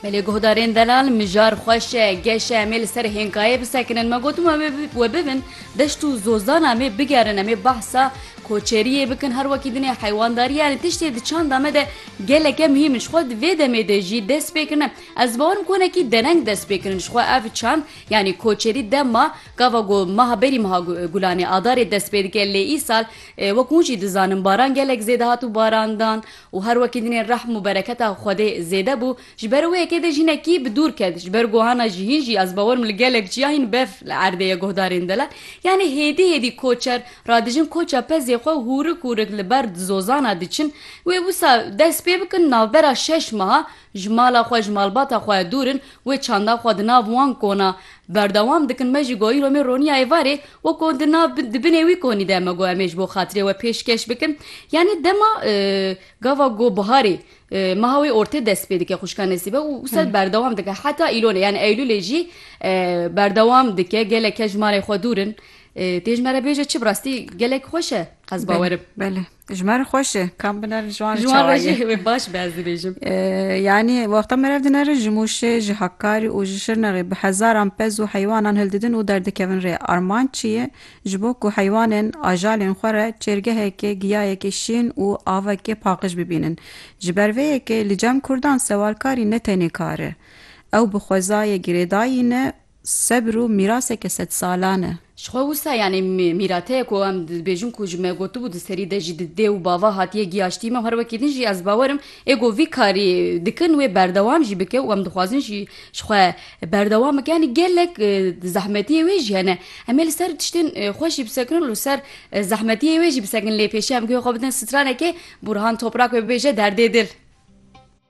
Belê guhdarên delal mijar xweş e, geş e em ê li ser hênkayê bisekinin. Me gotin we bibin deşt û zozan em ê bigerin em ê behsa koçeriyê bikin her wekî dinê heywandariyê yanî tiştê di çanda me de geleke muhîm in ji xwe di vê demê de jî dest pê kirine. Ez bawerim ku hinekî dereng dest pê kirin ji xwe ev çand yanî koçerî dema gava ku meha berî meha gulanê adarê dest pê dike lê îsal wek hûn jî dizanin baran gelek zêde hat û barandan Û her wekî dinê rehm û bereketa Xwedê zêde bû, ji ber wê yekê dê jinekî bi dûr ket, ji ber guhana jihîn jî ez bawer im li gelek ciyahîn bev li erdê ye guhdarên dile, yanî hêdî hêdî koçer radijin koça pezê xwe û hûrik hûrik li ber dizozana diçin, wê wisa dest pê bikin navbera şeş meha Ji mala xwe, ji malbata xwe dûr in, wê çanda xwe di nav wan kona. Berdewam dikin me jî got îro me roniya êvarê, weko di nav di binê wî konî de, me got em ê ji bo xatirê we pêşkeş bikin. Yanî dema gava ku biharê, meha wê ortê dest pê dike xwişka Nesîbe û wisa berdewam dike heta îlonê yanî eylûlê jî berdewam dike. Gelek kes ji malê xwe dûr in. Tê ji me re bêje çi bi rastî gelek xweş e ez bawer im. Ji me re xweş e kam binerin ji wan re Jiwan re çawa ye. jî wê baş bi ez dibêjim. Ee, Yanî wexta merev dinerin ji Mûşê, ji Hakkari û ji Şirnexê bi hezaran pez û heywanan hildidin û derdikevin rê. Armanc çi ye? Ji bo ku heywanên ajalên xwe re çêrgehekê, giyayekê şîn û avekê paqij bibînin. Ji ber vê yekê li cem kurdan sewalkarî ne tenê kar e. Ew bi xwezayê girêdayî ne, Sebr û mîraseke sedsalan e. Ji xwe wisa yanî mîrateye ku em dibêjin ku ji me gotibû di serî de jî di dê û bava hatiye giyaştî me û her wekî din jî ez bawer im ê ku vî karî dikin wê berdewam jî bike û em dixwazin jî ji xwe berdewam bike yanî gelek zehmetiyê wê jî hene em ê li ser tiştên xwe jî bisekin û li ser zehmetiyê wê jî bisekin lê pêşiya em guhê xwe bidin stranekê Burhan Toprak wê bibêje derdê dil.